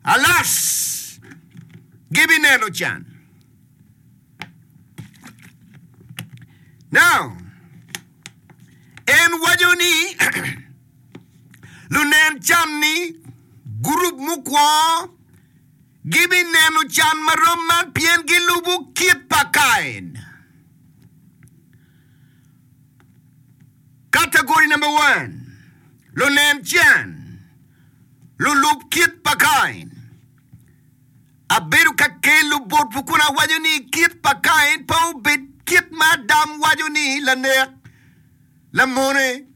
Alas! Gibineno can. Now, en waco ni lunen can-ni, gurup mukwongo, gibineno can ma rom man pien gilubo kit pa Kain. Kategori number one, lunen can. lulub kit pa Kain. Abedo ka kelo botwu kun awaco ni kit pa Kain pe obed kit ma Adam waco ni lanek, lamone,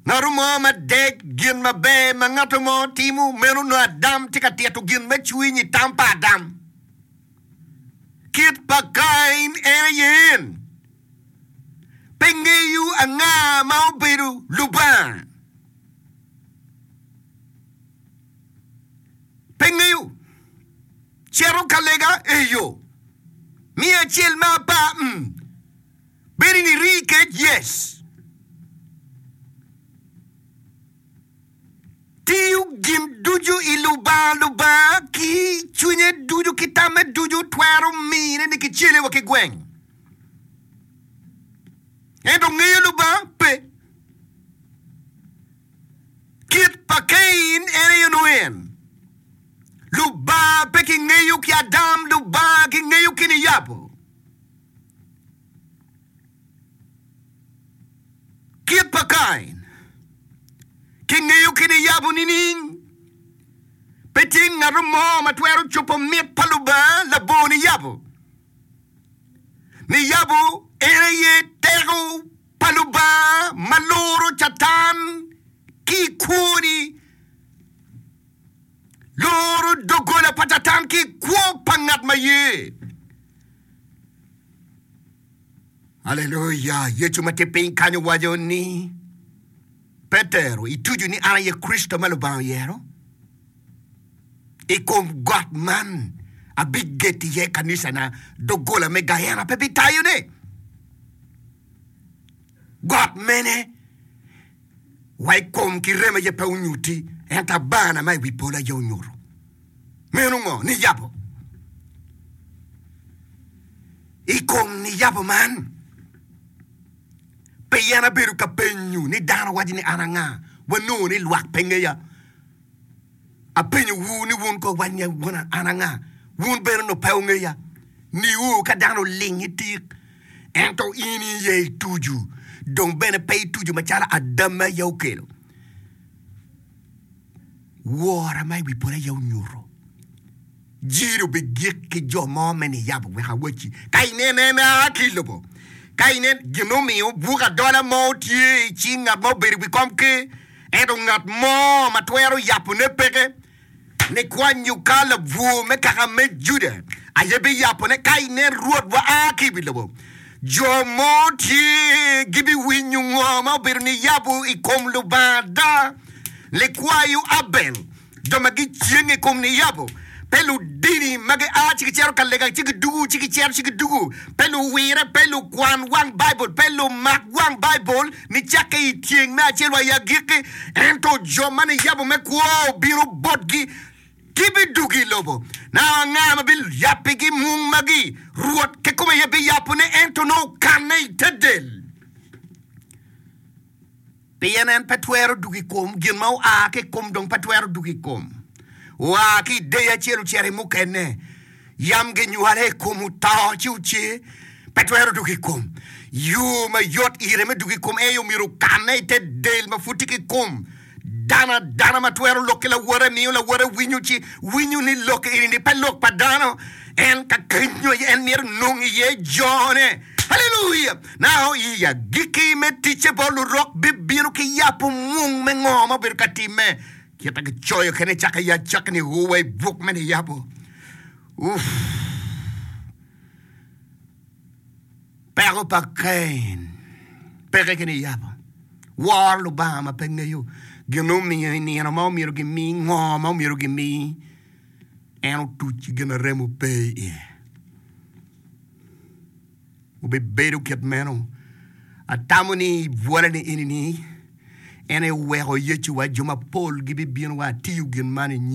ngato mo ma dec gin maber ma ngato mo timo. Meno nongo Adam tye ka tito gin me cwiny i tam pa Adam. Kit pa Kain en aye en. pe ngeyo anga ma obedo Lubanga. Pe ngeyo. Cito ka lega eyo. Miyo acel me apar mm. Bedi ni rii kec yes. Tiyo gin ducu i Lubanga Lubanga ki cwinye ducu ki tamme ducu twero mine ni kicele wa ki gweng. Ento ngeyo Lubanga pe. Kit pa Cain en aye onongo en. Lubanga pe kingeyo ki Adam, Lubanga kingeyo ki niyabo. Kit pa Cain kingeyo ki niyabo nining? Pe tye ngato mo ma twero cupo mit pa Lubanga labongo niyabo. Niyabo en aye teko pa Lubanga ma luro Catan ki i kwoni, luro doggola pa Catan ki i kwo pa ngat ma ye. Aleluya! Yecu ma tye piny kany owaco ni, Petero, itucu ni an aye Kricito ma Lubanga oyero? I kom got man abigeto iye kanicana, doggola me Gayena pe bitayone. Got mene wa i kom ki rem aye pe onyuti, ento abana ma i wi polo aye onyuto. Meno ngo? Niyabo. I kom niyabo man, pien abedo ka penyo ni dano waco ni an anga, wanongo ni lwak pe ngeya. Apenyo wu ni wun ko wany ni wun an anga? Wun bene onongo pe wungeya. Niu ka dano oling i tik, ento in i ye i tuju, dong bene pe i tuju macalo Adam me aye okelo, wora ma i wi polo aye onyuto. Jiro bigik ki jo mo me niyabo wek awacci, ka inen en aa ki i lobo, ka inen gin omiyo buk adola mo tye i cing ngat ma obedo i wi komker, ento ngat mo ma twero yabone peke, likwanyo ka labwor me kaka me Juda aye biyabone, ka inen Rwotwa aa ki i wi lobo, jo mo tye gibiwinyo ngo ma obedo niyabo i kom Lubanga ada, likwayo Abel. jo ma gicenge i kom niyabo, pe ludini ma gia ci gicito ka lega ci gidwogo ci gicito ci gidwogo, pe luwire, pe lukwan wang Baibul, pe lumak wang Baibul nicakke i tyeng me acel wa i agikki. Ento jo ma niyabo me kwo obino botgi, gibidwogo i lobo. Na anga ma biyabbigi mung magi? Rwot kikome aye biyabone, ento nongo okanne i te del. Pien en pe twero dwogo i kom gin ma oa ki i kom dong pe twero dwogo i kom oa ki i deyo acel ocito i mukene. Yam ginywale i kom oto ci oce, pe twero dwogo i kom. Yo ma yot ire me dwogo i kom aye omyero okanne i te del ma pud tye ki i kom dano. Adana ma twero lok ki lawote miyo lawote winyo ci winyo ni lok eni-ni pe lok pa dano. En ka kenyo aye en myero enong iye jone. Haleluya! Nako i agikki me ticce bot Lurok bibino ki yap omung me ngo ma obedo ka timme, kit ma kicoyo kene cak i acakki ni ur wa i buk me niyabo. Uff! Peko pa Cain peke ki niyabo. Woro Lubanga ma pe ngeyo gin omiyo i nino ma omyero gimi ngo ma omyero gimi, en otuc ki gin arem ope iye. obibedo kit meno. Atamo ni i bwolani eni ni, en eweko Yecu wa jo mapol gibibino wa atiyo gin man i nyingi.